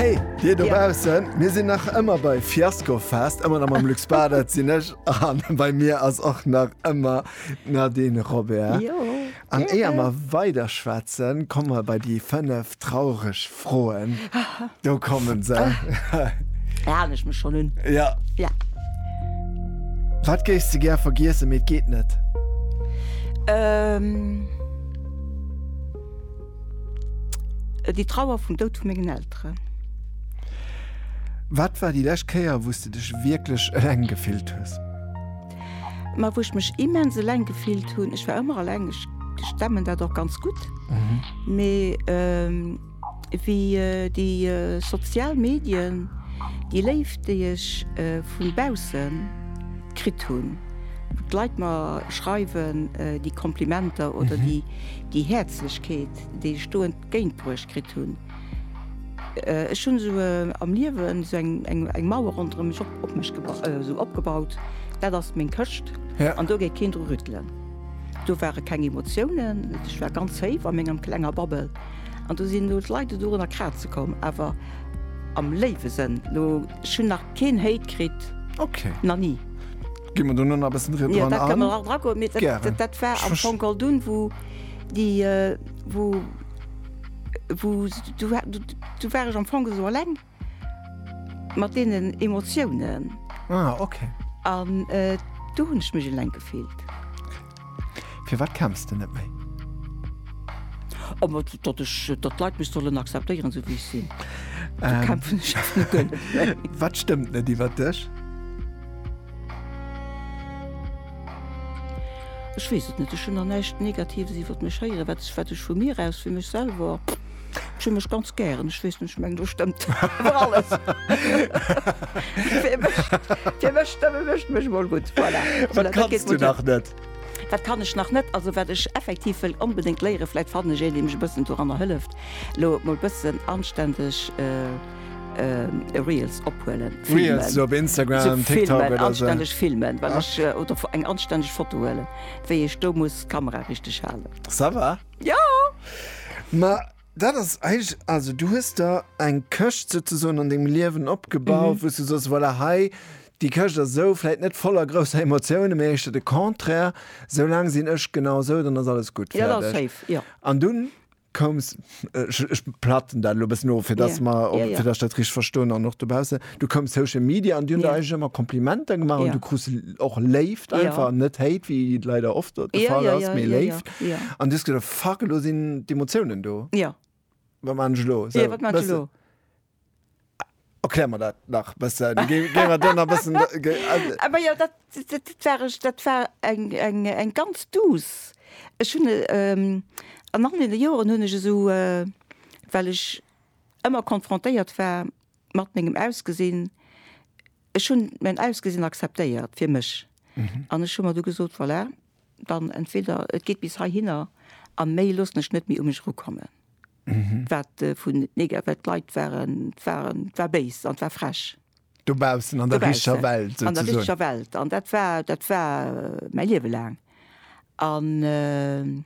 Hey, dir do baussen, mir sinn nach ëmmer bei Fiasko fest, ëmmer am am Lux Bader sinn ech an bei mir ass och nach ëmmer Nadine Robert. An éier mer weider schwätzen, komme mer bei déi fënnef traureg Froen. Do komme se. Da halen ech mech schonn un. Ja. Wat géifs de gär vergiessen, mee et geet net? Äh, déi Trauer vum Doud vu mengen Elteren. Wat war déi lescht Kéier, wou s de dech wierklech eleng gefillt hues? Ma wou ech mech immens eleng gefillt hunn, ech war ëmmer eleng, ech stemmen dat och ganz gutt, mee wéi déi sozial Medien, déi Léift, déi ech vu bausse kritt hunn, wou d'Leit mer schreiwen, déi Komplimenter oder déi Déi Häerzlechkeet, déi ech do entgéintbruecht kritt hunn, ech hunn esou am Liewen esou eng Mauer ronderëm mech op mech esou opgebaut, dat ass meng Këscht an do gétt keen dru rüttelen. Do ware keng Emotiounen, ech war ganz séif a menger klenger Bubble an do sinn elo d'Leit dorunner kraze komm, awer am léiwe Sënn. Ech hunn nach keen Hate kritt, nach ni. Ginn mer do no nach e bëssen dran an? Jo, dat kënnen mer nach dran goen. Gären. Dat war am Fong all dunn, wou déi, wou, wou, do war, do war ech am Fong esou eleng mat deenen Emotiounen. Ah, okay. An do hunn ech mech eleng gefillt. Firwat kämpfs de net méi? Datt ech, datt d'Leit mech sollen akzeptéieren esou wéi ech sinn. Do kämpfen ech awer net gëllen. Wat stëmmt net iwwer dech? Ech weess et net. Ech hunn der näischt Negatives iwwer mech héieren. Wat ech, wat ech vu mir aus, fir mech selwer. Ech hunn mech ganz gären. Ech weess net, ech mengen do stëmmt awer alles. Fir mech, fir mech stëmme mech mech mol gutt. Voilà. Wat Voilà, dat kanns geet du gutt. nach net? Wat kann ech nach net? Also wat ech effektiv wëll onbedéngt léieren, vläit fannen ech een, dee mech e bëssen doranner hëlleft, elo mol e bëssen anständeg äh, Reels ophuelen, filmen. Reels op Instagram, So TikTok filmen, oder so. anständeg filmen, well Ah. ech, äh, oder fo- eng anständeg Foto huelen, wéi ech do muss d'Kamera richteg halen. Ça va. Jo! Ma dat ass eigentlech, also du hues der eng Këscht souzesoen an dengem Liewen opgebaut, mhm. wou du soss, voilà, hei, déi Këscht ass esou, vläit net voller grousser Emotiounen, mä éischter de Contraire, soulaang sinn ech genau esou, dann ass alles gutt. Ja, fertig. Safe, ja. An dunn koums, ech platten dat elo e bëssen of, fir dass yeah. mer, yeah, yeah. fir dass ech dat richteg verstoen an och dobaussen, Du koum Social Media an Dir hutt yeah. eis ëmmer Komplimenter gemaach yeah. an du krus och Léift einfach yeah. net Hate wéi leider oft de yeah, Fall yeah, ass yeah, méi yeah, Léift an yeah, yeah. dus gët fuck lo sinn d'Emotiounen do. Ja. Yeah. Wat man lo? So, yeah, wat man lo? Erklär mir dat nach bëssen. Géiwer dann a bëssen. Aber ja, dat, dat, dat, war, dat war eng, eng, eng ganz dus. Ech hunn ähm, an nach de Joren hunn ech eso äh, well ech ëmmer konfrontéiert war Mat mengem Ausgesinn, ech hunn mäin Ausgesinn akzeptéiert fir mech an ech hu mer du gesot, voilà, dann entweder et geet bis heihinner a méi loossen ech net méi u mech erukommen. Wat vun nega-, wat d'Leit waren, waren, war béis an war frech. Dobaussen, an der richtger Welt souzesoen. An der richtger Welt. An dat war, dat war mäi Liewe laang. An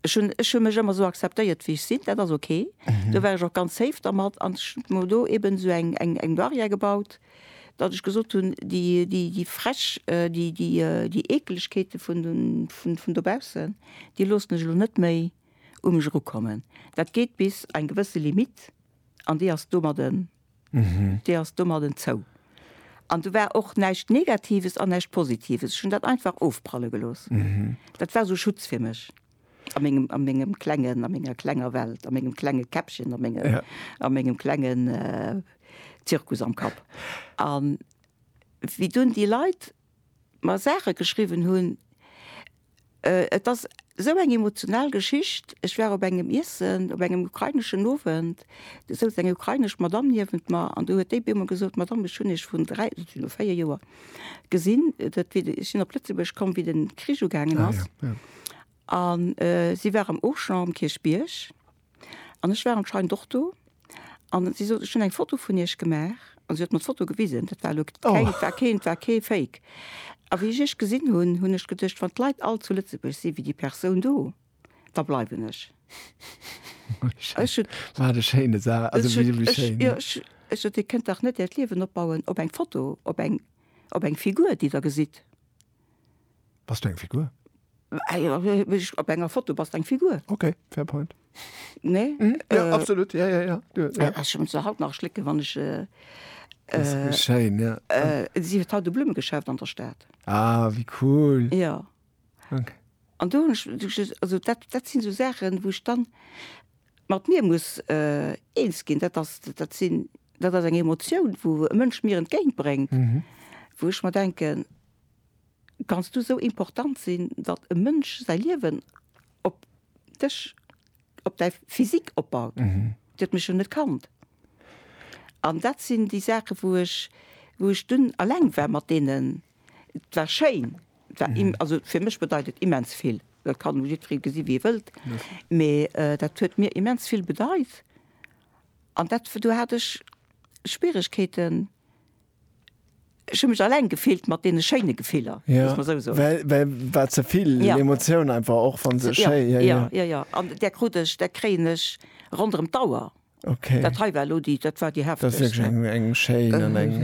Ech hunn, ech hu mech ëmmer esou akzeptéiert, wéi ech sinn. Dat ass ok. Do war ech och ganz safe dermat. An ech hunn mer do eeben esou eng, eng, eng Barrière gebaut, datt ech gesot hunn, déi, déi, déi frech, déi, déi, déi Eekelegkeete vun, vun, vun dobaussen, déi loossen ech elo net méi u mech erukommen. Dat geet bis eng gewësse Limite an déi ass domadden D'Dir ass domadden zou. An do war och näischt Negatives an näischt Positives. Ech hunn dat einfach ofpralle gelooss. Dat war esou Schutz fir mech a mengem, a mengem klengen, a menger klenger Welt, a mengem klenge Käppchen, a menge, a mengem klengen Zirkus am Kapp. A wéi dunn déi Leit mer Saache geschriwwen hunn. Et ass esou eng emotional Geschicht, ech war op engem Iessen, op engem ukraineschen Owend, do souz eng ukrainesch Madamm niewent mer an do huet déi op eemol gesot, Madamm, ech hunn Iech vrun dräi, dat sinn elo véier Joer, gesinn, dat wéi de, ech sinn op Lëtzebuerg komm, wéi den Krich ugaangen ass. An si war am Auchan um Kierchbierg. An ech war anscheinend och do. An si sot, ech hunn eng Foto vun Iech gemaach. An si huet mer d'Foto gewisen. Dat war elo keng, dat war keen, dat war kee Fake. A wéi ech Iech gesinn hunn, hunn ech geduecht, wann d'Leit all zu Lëtzebuerg si wéi déi Persoun do, da bleiwen ech. Ech hunn, Wat e schéine Sa, also ech hunn, wéi ech, schéin. jo, ech, ech sot, Dir kënnt dach net Äert Liewen opbauen op eng Foto, op eng, op eng Figur, déi Der gesitt. Bass du eng Figur? Op enger Foto bass eng Figur. Okay, fair point. Nee? Mm, ja, äh, absolut, ja, ja, ja. Du, ja. Äh, schon so haut nach schlicken, wann ich. Äh, äh, schein, ja. äh, sie hat haut de Blummegeschäft an der Stadt. Ah, wie cool. Ja. Okay. An du, also dat, dat sind so Sachen, wo ich dann mat mir muss äh, eens gin, dat, das, dat, sind, dat ass eng Emotion, wo e Mënsch mir entgéintbrengt, mhm. wo ich mal denken, Kanns du sou important sinn, datt e Mënsch säi Liewen op dech, op däi Physique opbaut? Dir huet mech jo net kannt. An dat sinn déi Saache wou ech, wou ech dunn eleng war mat deenen. Et war schéin, et war im, also fir mech bedeit et immens vill. Dat kann elo jiddweree gesi wéi e wëllt, mee dat huet mir immens vill bedeit. An dat, do hat ech Schwieregkeeten. Ech hunn mech alleng gefillt mat deene schéine Gefiller, muss mer esou soen. Well war ze vill Emotioun einfach, och wann se schéi. Jo, jo, jo, jo. An där krut ech, där kréien ech ronderëm d'Auer. Okay. Dat hei war elo déi, dat war déi heftegst. Dat ass wierklech eng schéin an eng.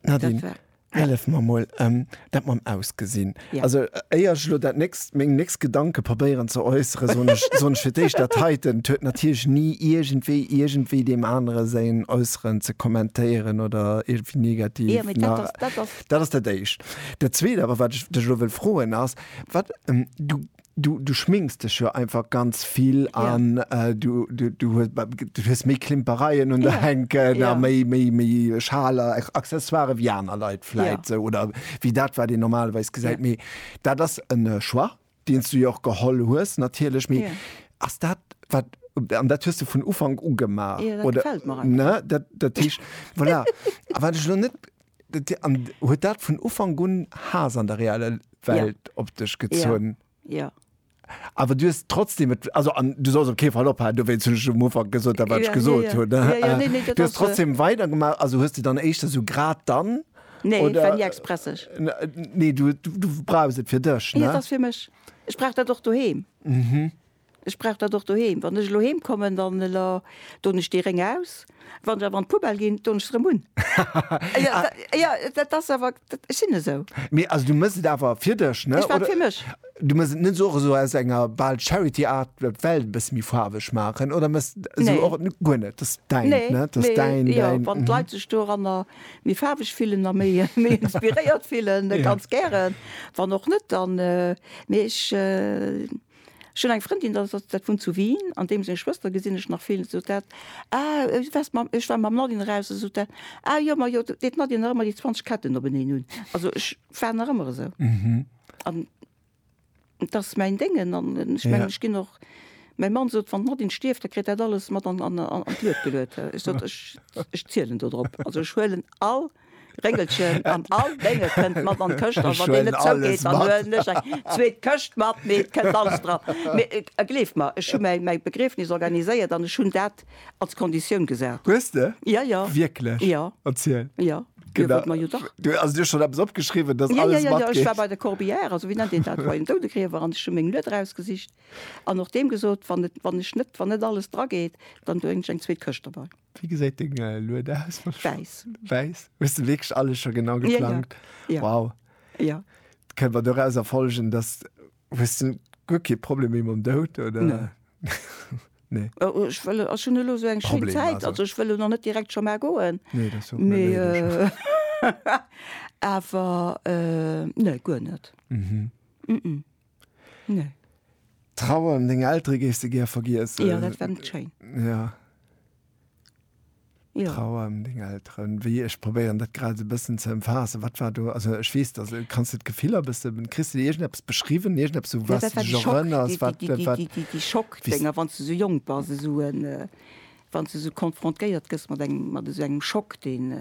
Nadine. Hellef mer mol em dat mam Ausgesinn. Also éier ech elo dat nächst, meng nächst Gedanke probéieren ze äusseren, soen ech, soen ech fir d'éischt, dat heiten huet natierlech ni iergendwéi, iergendwéi deem anere säin Äusseren ze kommentéieren oder iergendwéi negativ na. Jo, mee dat ass, dat ass. Dat ass dat éischt. Dat zweet awer, wat ech dech elo wëll froen, ass, wat, du Du du schminks dech jo einfach ganz vill ja. an äh, du, du, du, hues, du hues méi Klimpereien un der ja. Henken ja. a méi méi méi Schaler Accessoire wie aner Leiit fläit ja. oder wie dat war Dir normalweis gesäit méi. Ja. Dat ass en äh, Choix, deen du jo och geholl hues natierlech méi ja. ass dat wat an dat huest du vun Ufang ugemaach ja, oder dat, voilà. wat ech lo net An huet dat vun Ufank un Haass an der reeller Welt ja. op dech gezunn? Ja. ja. Awer du hues trotzdem et, also an du solls op kee Fall ophalen, do wéinst hunn ech um Ufank gesot, dat wat ech gesot hunn. Du hues trotzdem weidergemaach, also hues de dann éischter esou grad dann? Nee, et war ni expresseg. Nee, du brauchs et fir dech, ne? Jo, et ass fir mech. Ech brauch dat och doheem. Mhm. Ech brauch dat och doheem. Wann ech elo heem kommen, dann doen ech dee Réng aus. Wann ech awer an d'Poubelle ginn, doen ech se erëm un. Jo, dat ass awer, ech sinn esou. Mee also, du méchs et awer fir dech, ne? Ech maache et fir mech. Du méchs et net esou och esou aus enger bal Charity-Art, d'Welt e bësse méi faarweg maachen? Oder méchs et esou och guer net? Dat ass däin, ne? Nee, dat ass däin, däin. Jo, wann d'Leit sech doranner méi faarweg fillen a méi inspiréiert fillen, ganz gären. Wann och net, dann, mee ech, Ech hunn eng Frëndin, dat ass, dat wunnt zu Wien, an deem seng Schwëster gesinn ech nach vill, sot dat, Ah, du waars mam, ech war mam Nadine raus, da sot dat, Ah jo, ma jo, deet d'Nadine nach ëmmer déi 20 Ketten openeen un. Also ech war nach ëmmer esou. An et ass mäin Déngen an ech mengen, ech ginn och, mäi Mann sot, wann d'Nadine stierft, da kritt dat alles mat an d'Luet geluet. Ech sot, ech zielen dodrop. Also ech huelen all. Réngelchen an all Dénge kënnt mat an d'Këscht. A wann deen net zougeet, dann huelen ech eng zweet Këscht mat. Mee et kënnt alles dran. Mee gleeft mer, ech hu mäi Begriefnis organiséiert an ech hunn dat als Konditioun gesat. Hues de? Ja, ja. Wierklech? Ja. Erziel. Ja. Dir hutt mer jo dach. Du hues dir schonn eppes opgeschriwwen, dass alles matgeet? Jo, jo, jo. Ech war bei der Corbière, also wéi nennt een dat, bei den Doudegriewer an ech hu meng Lueder ausgesicht an och deem gesot, wann et, wann ech net, wann net alles drageet, dann doen ech eng zweet Këscht derbei. Wie gesäit deng äh, Lued aus? Wäiss. Wäiss? Hues du wierklech alles scho genau geplangt? Ja, ja. Wow. Ja. Kënnt man doraus erfolgen, dass hues du guer kee Problem méi mam Dout oder? Nee. nee. Äh, oh, ech wëll ass schon elo so eng schéin Zäit, also. also ech wëll noch net direkt scho mar goen. Nee, das so. Me äh, awer äh, nee, guer net. Mhm. Mm -mm. Nee. D'Trauer ëm deng Eltere géifs de gär vergiessen? Jo, dat wär net schéin. Jo. Jo. D'Trauer ëm deng Elteren, wéi, ech probéieren dat grad esou e bëssen ze ëmfaassen. Wat war do, also ech weess, dass, kanns de d'Gefiller e bësse, kriss de déi iergendeppes beschriwwen, iergendeppes esou, wou s de dech erënners, wat, wat, wat, déi, déi, déi, déi, déi Schockdinger, wou s de esou jonk bass, esou en, Wann s du esou konfrontéiert gëss mat engem, mat esou engem Schock, deen,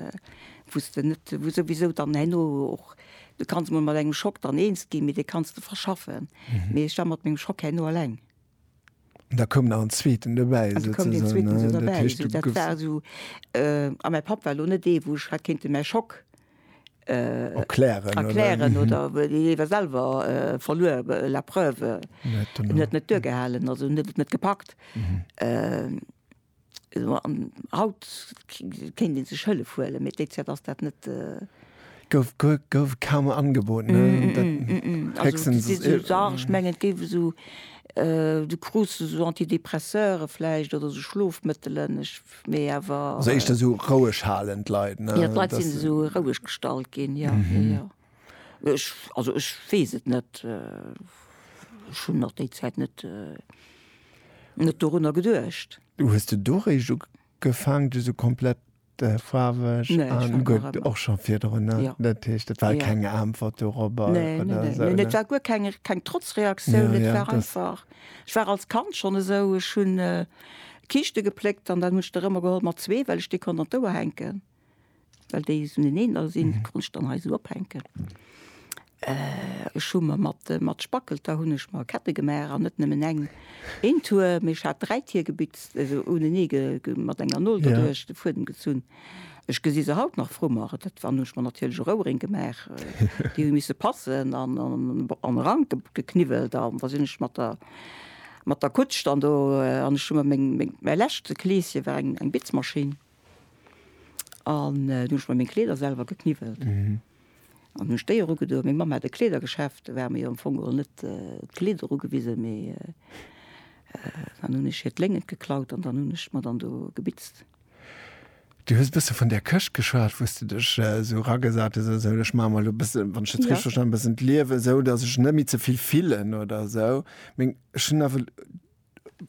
wou s de net, wou souwisou dann herno och, du kanns emol mat engem Schock dann eens ginn, mee dee kanns de verschaffen. Mee ech war mat mengem Schock herno eleng. An da koum nach en zweeten dobäi. An da koum deen zweeten esou dobäi. Dat heescht, du goufs. Esou, dat war esou, a mäi Papp war elo net dee, wou ech hat kéinten mäi Schock. erklären erklären oder iwwer selwer verluer la preuve net net duergehalen also net et net gepackt an haut kéint dee sech hëllef huele mee déi Zäit ass dat net gouf gouf kaum angebot ne ech menge et géif esou du krus esou antidepresseure vläicht oder esou schlofmëttelen ech mee awer. Also éischter sou roueg halen d'Leit, ne? Jo, d'Leit sinn esou roueg gestallt ginn, jo, jo, jo. Ech, also ech weess et net. Ech hunn nach déi Zäit net, net dorunner geduecht. Du hues de do réischt ugefaangen, du sou komplett faarweg an. Nee, ech war guer. Gutt, och scho virdrun, ne? Jo. Dat heescht, et war keng Äntwert dorobber oder esou, ne? Nee, nee, nee, et war guer keng, keng Trotzreaktioun, et war einfach. Ech war als Kand schonn esou, ech hunn. Kiischte gepléckt an dann hunn ech der ëmmer geholl mat zwee, well ech déi konnt an d'Ouer hänken, well déi esou neneener sinn, déi konnt ech dann hei esou ophänken. Ech hu mer mat, mat Spackelter hunn ech mer Kette gemaach an net nëmmen eng, een Tuer, mee ech hat dräi Tier gebitzt, esou unenee ge, ge, mat enger Nol doduerch de Fuedem gezunn. Ech gesi se haut nach vru mer. Dat war, hunn ech mer natierlech och Ouering gemaach, déi hu misse passen an, an, an e Rank ge, gekniwwelt an da sinn ech mat der. Mat der Kutsch dann do, an ech hu mer meng, meng, mäi leschte Kleeschen war eng, eng Bitzmaschinn, an du hunn ech mer meng Kleeder selwer gekniwwelt an hunn ech déi erugedoen. Meng Mamm hat e Kleedergeschäft, do war mer jo am Fong geholl net d'Kleeder erugewisen, mee dann hunn ech hir d'Léngent geklaut an dann hunn ech mer dann do gebitzt. Du hues e bësse vun där Këscht geschwat, wou s du dech esou eragesat hues oder esou. Ech maache mer elo e bësse, wann ech dat richteg verstanen hunn, e bëssen d'Liewen esou, datt ech net méi ze vill fillen oder esou. Mee ech hunn awer,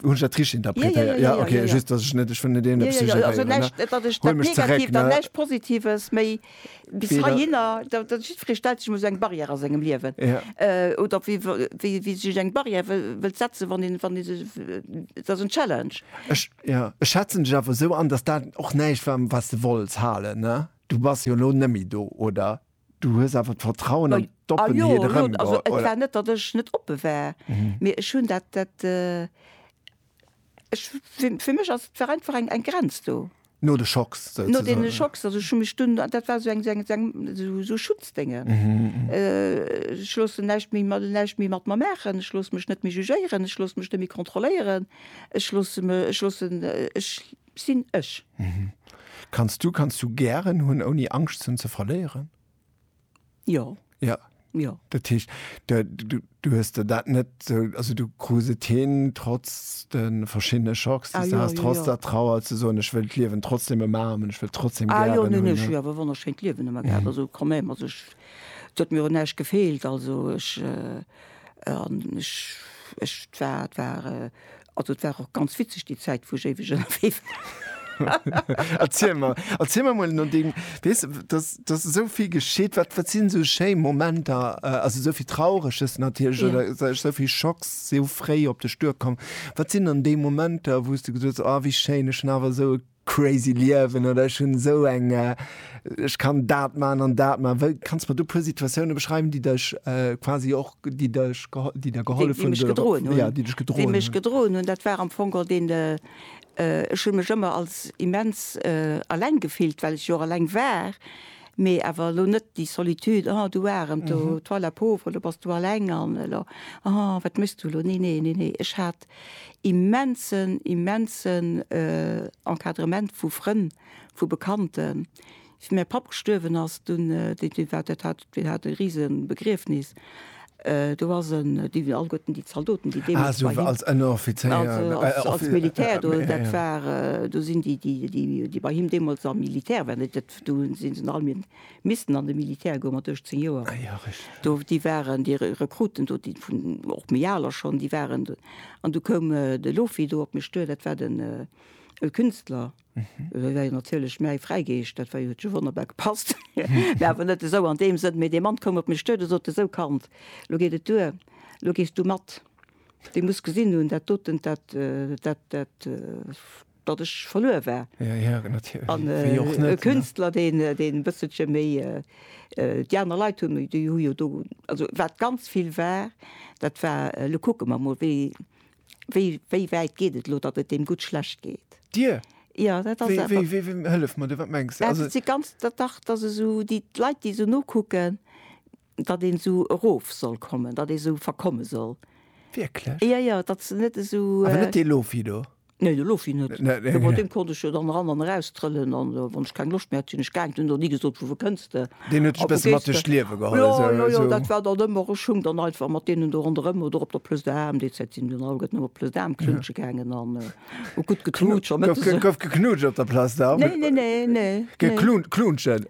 hunn ech dat richteg interpretéiert? Jo, okay, just, datt ech net, ech wëll net iergendepes suggéréieren, ne? Huel mech zeréck, ne? Bis Weder. heihinner, da, da jiddweree stellt sech mol esou eng Barrière a sengem Liewen. Ja. Äh, oder wéi, wéi, wéi sech eng Barrière wëll, wëllt setzen, wann een, wann ee sech, dat ass en Challenge. Ech, ja, ech schätzen dech awer esou an, dass dat och näischt war, wat s de wollts halen, ne? Du bass jo elo nëmmi do, oder? Du hues awer d'Vertrauen an d'Oppenheet erëm, oder? Ah jo, elo, also et war net, datt ech net oppe war, mee ech hunn dat, dat, Ech, fir, fir mech ass, war einfach eng, eng Grenz do. No de Schocks souzesoen. No deene Schocks, also ech hu mech dunn, dat war esou eng, esou eng, esou eng, esou, esou Schutzdénge. Ech loossen näischt méi, näischt méi mat mer maachen, ech loosse mech net méi jugéieren, ech loosse mech net méi kontrolléieren, ech loosse me, ech loossen, ech sinn ech. Kanns du, kanns du gären hunn, ouni Angscht hunn ze verléieren? Jo. Ja. Jo. Dat heescht, de, du, du hues der dat net sou, also du krus et hin, trotz de verschiddene Schocks, ah, déi du has, trotz der Trauer ze soen, ech wëll d'Liewen trotzdem ëmaarmen, ech wëll trotzdem ah, jo, ne, ne, ech hu awer wonnerschéint Liewen ëmmer gehat, mhm. also quand même, also ech, et huet mir un näischt gefeelt, also ech, äh, an ech, ech war, war äh, Also et war och ganz witzeg déi Zäit wou ech éiweg ënnerwee war. Erziel mer, erziel mer mol no deem, weess de, dass, dass esou vill geschitt, wat, wat sinn esou schéi Momenter, also esou vill Traureges natierlech Ja. oder sou, esou vill Schocks si esou fréi op dech duerkomm. Wat sinn dann déi Momenter, wou s du gesot hues, oh wéi schéin, ech hunn awer esou e crazy Liewen oder ech hunn esou eng, ech kann dat man an dat man. Wéi kanns de mer do puer Situatiounen beschreiwen déi dech quasi och, déi dech geholl, déi der gehollef hunn, déi dech gedroen hunn? Déi mech gedroen hunn, dat war am Fong och deen, ech hunn mech ëmmer als immens alleng gefillt, well ech jo och alleng war, mee awer elo net déi Solitude, oh du Arem, toi la pauvre, elo bass du alleng an elo, oh wat méchs du elo, nee nee nee nee, ech hat Immensen, immensen Encadrement vu Frënn, vu Bekannten. Wéi mäi Papp gestuerwen ass, dunn, dee, dee war, dat hat, deen hat e rise Begriefnis. Do ass en, déi si alleguerten, déi Zaldoten, déi deemools bei him. Ah, esou als Ënneroffizéier, Offizier. Als Militär, do, dat war, do sinn déi, déi, déi bei him deemools am Militär waren, dat, do sinn se alleguerten. Missten an de Militär goe mat 18 Joer. Ah jo, richteg. Do, déi waren, déi Rekruten do, déi vun, och méi aler schonn, déi waren do. An du koum de Lofi do op mech duer, dat war den Künstler. Dat war jo natierlech mäi Fräigeescht, dat war jo, huet jo wonnerbar gepasst. Mä awer net esou an deem Sënn. Mee dee Mann koum op mech duer, dee sot, Esou Kand, elo geet et duer, elo gees du mat. Dir musst gesinn hunn, dat doten, dat, dat, dat, datt ech verluer war. Ja, ja, natierlech. An Wéi och net, e ne? Künstler, deen, deen e bësselche méi, déi aner Leit hunn, déi hu jo do, also wat ganz vill war, dat war, elo kucke mer mol, wéi, wéi, wéi wäit geet et elo, datt et deem gutt schlecht geet. Dir? Ja, dat ass Wéi, awer. wéi, wéi, wéi, hëllef mer du, wat mengs de? Ja, Also, dat si ganz, dat, dach, datt esou déi, d'Leit, déi esou nokucken, Datt een esou erof soll kommen, datt ee esou verkomme soll. Wierklech? Jo, jo, datt se net esou. Awer net dee Lofi do? Nee, de Lofi net. Mä deem konnt ech jo dann eran an eraustrëllen an wann ech keng Loscht méi hat, sinn ech gaangen. Deen huet och ni gesot, Vu wou kënns de? Deen huet dech e bësse mat duerch d'Liewe geholl esou? Jo, jo, jo, dat war dann ëmmer. Ech hung dann einfach mat deenen do ronderëm oder op der Plëss d'Aarm. Déi Zäit sinn dunn alleguerten ëmmer op d'Plëss d'Aarm knutsche gaangen an hu gutt geknutscht. Gouf geknutscht op der Plëss d'Aarm? Nee, nee, nee, nee. Geklunscht, knutschen?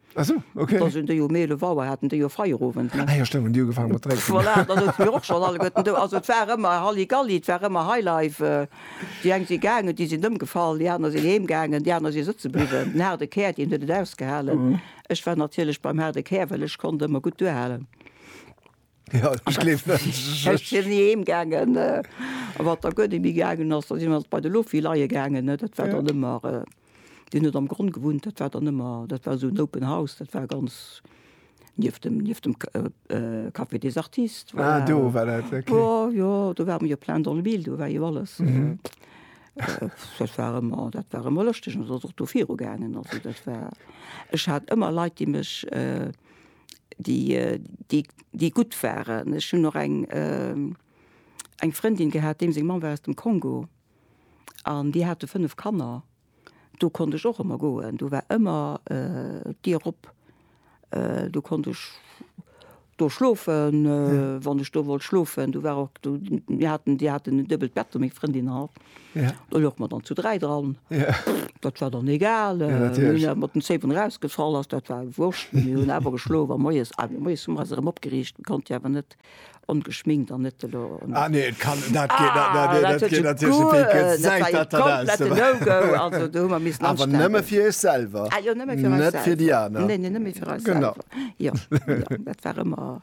Ah sou, ok. Da sinn déi jo méi 11 Auer, haten déi jo fräi um Owend, ne? Ah jo, stémmt, hunn déi ugefaangen mat drénken. Voilà, da souze mir och schonn alleguerten do. Also et war ëmmer Halligalli, et war ëmmer Highlife. Déi eng si gaangen, déi sinn ëmgefall, déi aner sinn heem gaangen, déi aner si sëtze bliwwen. Den haarde Kär, deen huet et ausgehalen. Ech war natierlech beim haarde Kär, well ech konnt ëmmer gutt duerhalen. Ja, ich gleef net. Ech si ni heem gaangen. A wat da guer net méi gaangen ass, da si mer bei de Loffi leie gaangen, ne. Dat war dann ëmmer, deen huet am Gronn gewunnt, dat war dann ëmmer, dat war esou en open house, dat war ganz nieft dem, nieft dem Café des Artistes, voilà. Ah, do war dat, ok. Jo, jo, do war ëmmer jo plein dans le mille, do war jo alles. Dat war ëmmer, dat war ëmmer lëschteg an et ass och do viru gaangen. Also dat war, ech hat ëmmer Leit, déi mech, déi gutt waren. Ech hunn och eng Frëndin gehat, deem seng Mamm war aus dem Kongo an déi hate fënnef Kanner. Do konnt ech och ëmmer goen, do war ëmmer d'Dier op. Do konnt ech do schlofen, wann ech do wollt schlofen. Do war och, do, mir haten, déi haten en duebelt Bett do, meng Frëndin an. Do louch mer dann zu dräi dran. Dat war dann egal. mat den Zéi vun erausgefall ass, dat war wurscht. Mir hunn awer geschlof a moies moies hu mer eis erëm opgeriicht. Konnt jo awer net ongeschminkt an net elo. Ah nee, et kann dat geet dat. Dat huet jo guer net. Also do hu mer missen anstänn. Awer nëmme fir Iech selwer. Ah jo, nëmme fir mech selwer. Net fir déi aner. Nee, nee, nëmme fir eis selwer. Genau. Jo, jo, dat war ëmmer.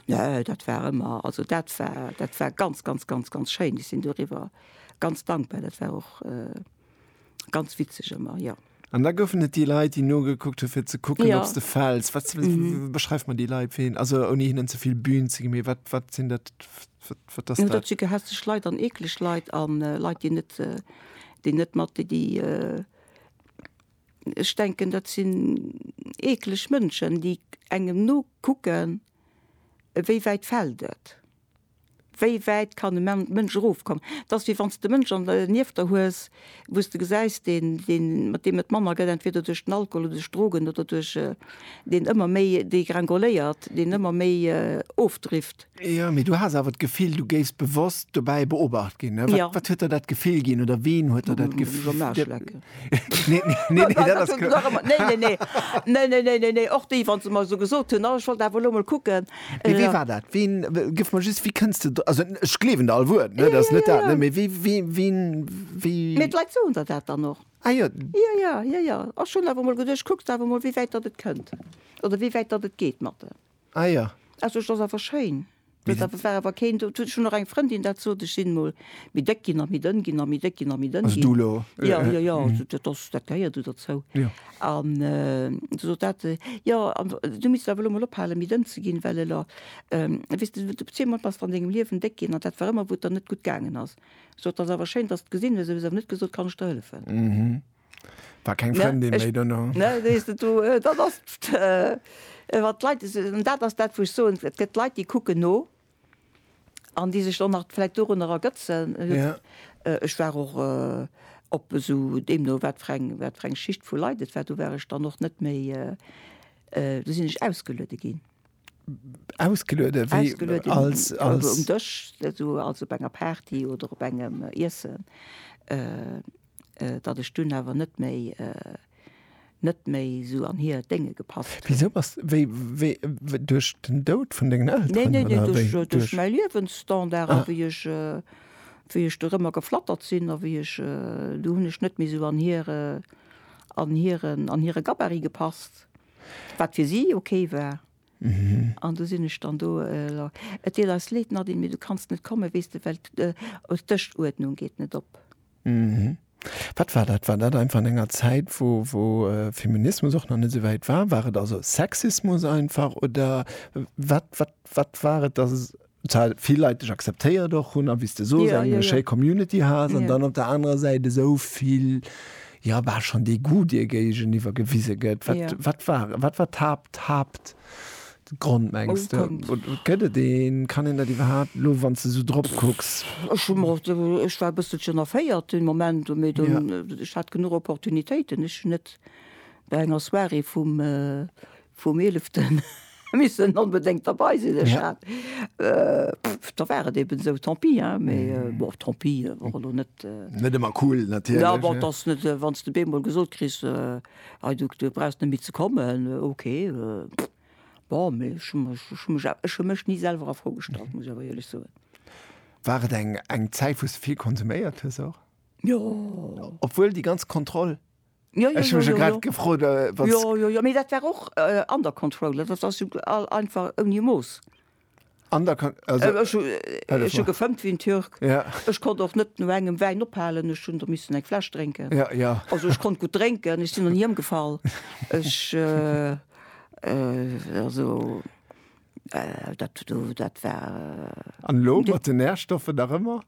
Nö, dat war ëmmer, also dat war, dat war ganz, ganz, ganz, ganz schéin. Ech sinn doriwwer ganz dankbar. Dat war och ganz witzeg ëmmer, jo. An da goufen et déi Leit, déi nogekuckt hu fir ze kucken, ob s de fäls. Wat, beschreif mer déi Leit, fir hinnen, also ouni hinnen ze vill Bühn ze ginn, mee wat, wat sinn dat, wat ass dat? Dat si gehässeg Leit an eekleg Leit a Leit, déi net, déi net mat, déi, déi, Ech denken dat sinn eekleg Mënschen, déi engem nokucken, wéi wäit fält et, wéi wäit kann e Mënsch erofkommen. Et ass wéi wann s de Mënsch an der nieft der hues, wou s de gesäis, deen, deen, mat deem et manner gëtt, entweder duerch den Alkohol oder duerch Drogen oder duerch, deen ëmmer méi degrengoléiert, deen ëmmer méi ofdrifft. Jo, mee du has awer d'Gefill, du géifs bewosst dobäi beobacht ginn. Wat, ja. wat huet der dat Gefill ginn oder ween huet der dat Gefill? Iwwer Maach lecken. nee, nee, nee, dat ass klar. Nee, nee, nee. Nee, nee, nee, nee, nee. Och déi, wann se mer esou gesot hunn, oh, ech wollt awer elo mol kucken. Mee wee war dat? Ween, gëff mer just, wéi kënns de do? Also ech gleewen der all Wuert, ne, dat ass net dat, ne, mee wee, wee, ween, wéi. Mee d'Leit soen der dat dann och. Ah jo. Jo, jo, jo, jo. Ech hunn awer mol geduecht, kucks awer mol, wéi wäit datt et kënnt oder wéi wäit datt et geet mat de. Ah jo. Also et ass awer schéin. Mee dat. Dat war awer keen do. Ech hunn och eng Frëndin dat sot, ech sinn mol méi déck ginn a méi dënn ginn a méi déck ginn a méi dënn ginn. Also du elo? Jo, jo, jo. Also dat ass, dat gehéiert do derzou. Jo. An du sot dat, jo, an du misst awer elo mol ophalen méi dënn ze ginn, well elo, weess de, du zwee mol bass der an dengem Liewen déck ginn an dat war ëmmer wou et der net gutt gaangen ass. Sot, et ass awer schéin dass de gesinn hues, mee hues awer net gesot, kann ech der hëllefen. Mhm. War keng Frëndin méi dono. Ne, sees de, do, dat ass wat d'Leit, an dat ass dat wou ech soen, et gëtt Leit déi kucken no an déi sech dann nach vläicht dorunner ergëtzen. Ech war och op esou, deemno wat fir eng, wat fir eng Schicht vu Leit et war, do war ech dann och net méi, do sinn ech ausgeluede ginn. ausgeluede als um Dësch also op enger Party oder op engem Iessen, datt ech dunn awer net méi net méi sou an hir Dénge gepasst hunn. Wisou bass wéi wéi duerch den Doud vun dengen Elteren? Neen neen neen duerch mäi Liewensstandard a wéi ech wéi ech dorëmmer geflattert sinn a wéi ech do hunn ech net méi sou an hire an hiren an hire Gabarit gepasst Wat fir si ok war. An du sinn ech dann do. Et deet eis leed, Nadine, mee du kanns net kommen, weess de, well d'Dëschuerdnung geet net op. Wat war dat? War dat einfach an enger Zäit, wou Feminismus och nach net esou wäit war? War et also Sexismus einfach oder wat war et, dass zwar vill Leit dech akzeptéiert och hunn a wéi s de sos, eng schéi Community has an dann op der anerer Säit esou vill, jo bal schonn Degoût dir géigeniwwer gewise gëtt. Wat wat war wat war d'Haapt d'Haaptgrond mengs de? Oder gëtt et een? Kann een dat iwwerhaapt elo wann s de esou drop kucks? Ech hu mer och, ech war e bësselchen erféiert den Moment, mee dunn, ech hat genuch Opportunitéiten. Ech hunn net bei enger Soirée vum Vum Eeleften missen onbedéngt derbei sinn, ech hat, pff, da war et eben esou, tant pis, hein, mee bon, tant pis wor elo net, Net ëmmer cool natierlech, ne. Jo, bon, et ass net, wann s de beemol gesot kriss, hei, du brauchs net méi ze kommen, ok, pff, bon, mee ech hu mech, ech hu mech, ech hu mech ni selwer a Fro gestallt, muss ech awer éierlech soen. War et eng Zäit, wou s de vill konsuméiert hues och? Jo. Obwuel déi ganz Kontroll? Jo, jo, jo, jo, jo. Gefrot, äh, jo, jo, jo, mee dat war och äh, under control, dat ass jo all einfach ouni Mooss. Under con also, äh, ech, äh, ech hu gefëmmt wéi en Türk. Ja. Ech konnt och net no engem Wäin ophalen, ech hunn der missen eng Fläsch drénken. Ja, ja. Also ech konnt gutt drénken, ech sinn och ni ëmgefall. Ech äh, äh, also äh, dat do, dat war. An elo mat de Nährstoffe nach ëmmer?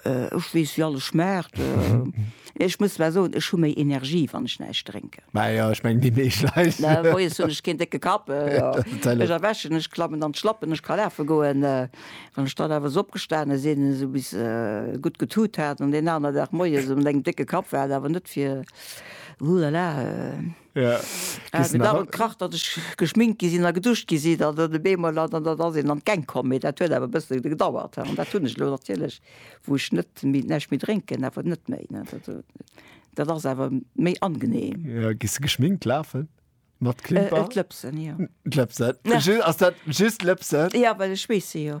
Ech weess wéi alles schmaacht. Ech muss zwar soen, ech hu méi Energie wann ech näischt drénken. Mä jo, ech mengen déi meescht Leit. Moies hunn ech keen décke Kapp, ech erwächen, ech klammen an d'Schlappen, ech ka lafe goen. Wann ech dann awer esou opgestane sinn, esou bis gutt getut hat an deen anere Dag moies um Néng décke Kapp war et awer net fir, huhlala. Et ass awer krass, datt ech geschminkt gi sinn a geduscht gi sinn an dann op eemol an dann ass een an d'Gäng komm. Mee dat huet awer e bësse gedauert an dat hunn ech elo natierlech, wou ech net méi, näischt méi drénken, awer net méi. Dat ass awer méi angeneem. Jo, gees de geschminkt lafen? Mat Klimper? D'Lëpsen, jo. D'Lëpsen? Ass dat just d'Lëpsen? Jo, well ech schweesse jo.